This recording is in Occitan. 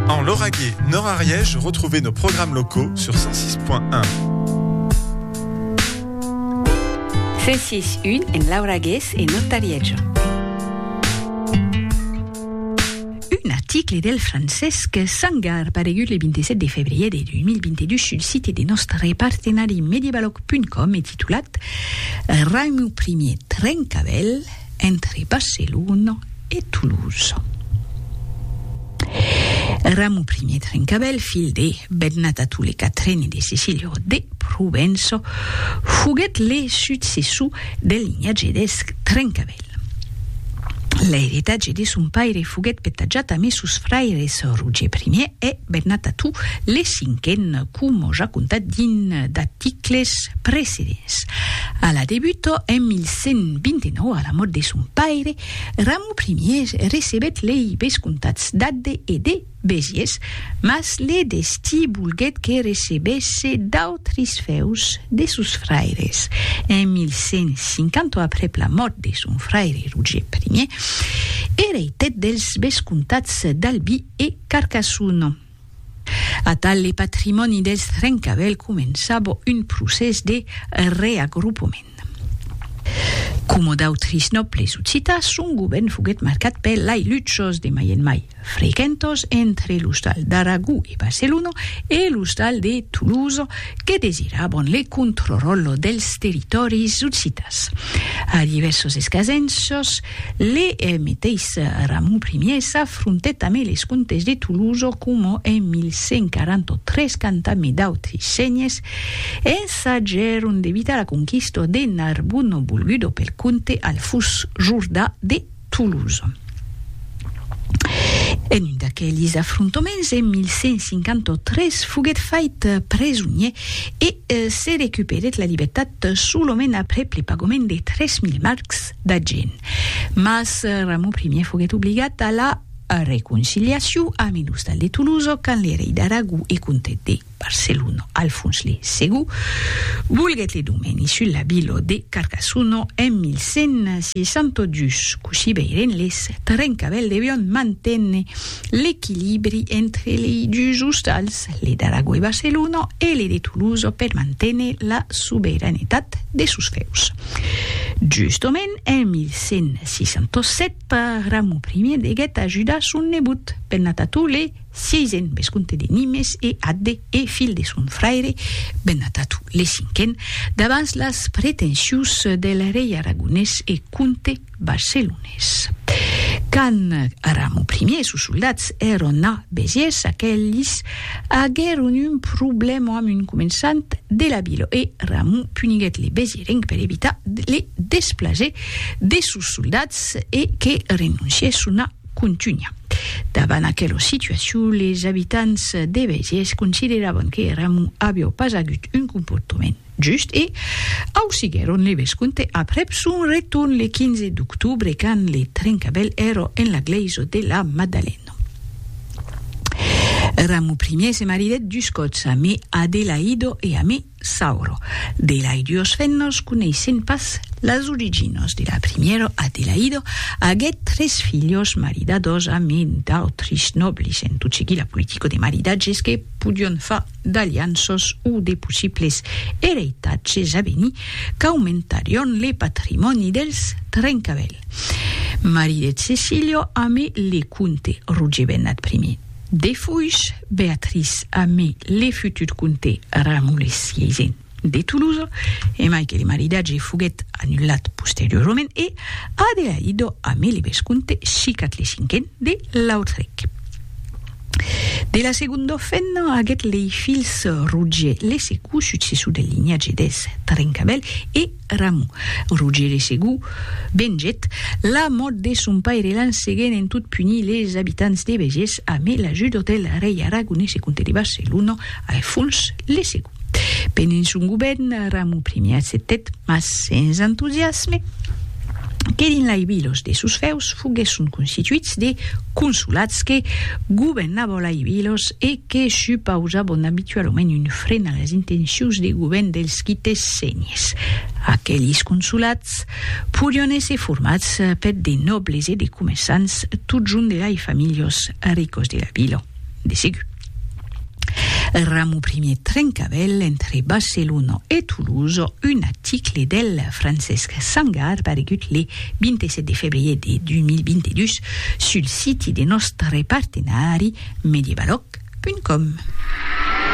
En Lauragais, Nord Ariège, retrouvez nos programmes locaux sur 106.1. 106.1 en Lauragais et Nord Ariège. Un article del Francesc Sangar paregut le 27 de février de 2022 sul site de nostre partenari medievaloc.com et titulat Raimou Ier Trencavèl, entre Barcelona e Toulouse. Ramu I Trencavèl, filh de Bernata Tule Catrene de Cecilio de Provença, foguèt le successor del linhatge dels Trencavèl. L'airetatge de son paire foguèt petajat amé sos fraires Roger I e Bennat a tu, le cinquen, coma ja contat dins d'articles precedents. A la debuta, en 1129, a la mòrt de son paire, Ramon Ier recebèt lei vescomtats d'Agde e de Besiers, mas le destí volguèt que recebesse d'autres fèus de sos fraires. En 1150, aprèp la mòrt de son fraire Roger Ier, ereitèt dels vescomtats d'Albi e Carcassonne. Atal le patrimòni dels Trencavèlh començava un procès de reagrupament. Coma d'autris nòbles occitans, son govèrn foguèt marcat per lai luchas de mai en mai frequentas entre l'ostal d'Aragó e Barcelona e l'ostal de Tolosa que desiravan le contrròtle dels territòris occitans. A divèrsas escasenças, Le meteis Ramon Primièr s'afrontèt amé les comtes de Toulouse coma en 1143 quand amé d'autri senhes ensagèron d'evitar la conquista de Narbona volguda pel comte Alfús Jordà de Toulouse. En un d'aquelis afrontaments en 1153 foguèt fait presonier e se recuperèt la libertat solament aprèp le pagament de 3000 marcs d'Agen. Mas Ramon Primièr foguèt obligat a la reconciliacion amb un ostal de Tolosa quand le rei d'Aragó e comte de Barcelona, Alfons le Segó, volguèt le domèni sus la vila de Carcassona en 1162. Cossí veirem les trencavèls devián manténer l'equilibri entre lei dus ostals, le d'Aragó e Barcelona e le de Tolosa per manténer la sobeiranetat de sos fèus. Justament en 1167, Ramon I deguèt ajudar son nebot, Bennatatule vi, vescomte de Nimes e atde e filh de son fraire Bennatatule V, davans las pretensions del rei aragonés e comte Barcelonés. Quand Ramon Primier e sos soldats èron a Besiès, aqueles aguèron un problèma amb un començant de la vila e Ramon puniguèt les Besierencs per evitar le desplaser de sos soldats e que renoncièsson a contunhar. Davant aquela situacion, les abitants de Besiès consideravan que Ramon aviá pas agut un comportament Just e au siguèron le vesconte aprèp son retorn le 15 d'octobre quand le trencabèl èro en la glèisa de la Maddalena. Ramu Ier se maridèt dus còps amé Adelaido e amé Sauro. De lai duos fennas coneissèn pas las originas de la primièra Adelaido aguèt tres filhas maridadas amé d'autris nòblis en tot seguir la politica de maridatges que podion far d'alianças o de possibles ereitatges a venir qu'aumentarion le patrimòni dels Trencavèl. Marie de Cecilio amé le comte Roger Bennat I. Defuish, Beatrice amé le futur comte Ramulhes vi. de Toulouse, e mai que le maridatge foguèt anullat posteriorament e Adelaïdo amé le vescomte Chicat le Cinquen de Lautrec. De la segonda femna aguèt lei filhs Roger le Segou, successor del linhatge dels Trencabèl, e Ramon. Roger le Segou vengèt la mòrt de son paire l'an seguent en tot punir les abitants de Begés amé l'ajuda del rei aragonés e comte de Barcelona Alfons le Segou. Benens un govèrn Ramu I acceptèt, mas sens entusiasme, que dins lai vilos de sos fèus foguèsson constituits de consulats que governabon lai vilos e que supausabon abitualament un fren a las intencions de govèrn dels quites senhers. Aquelis consulats podion èsser formats per de nòbles e de comerçants totjorn de lai familhos ricos de la vila. de segur. El ramo primier trencavèl entre Barcelona e Toulouse, un article del Francesc Sangar paregut le 27 de febrier de 2022 sul siti de nòstre partenari medievaloc.com.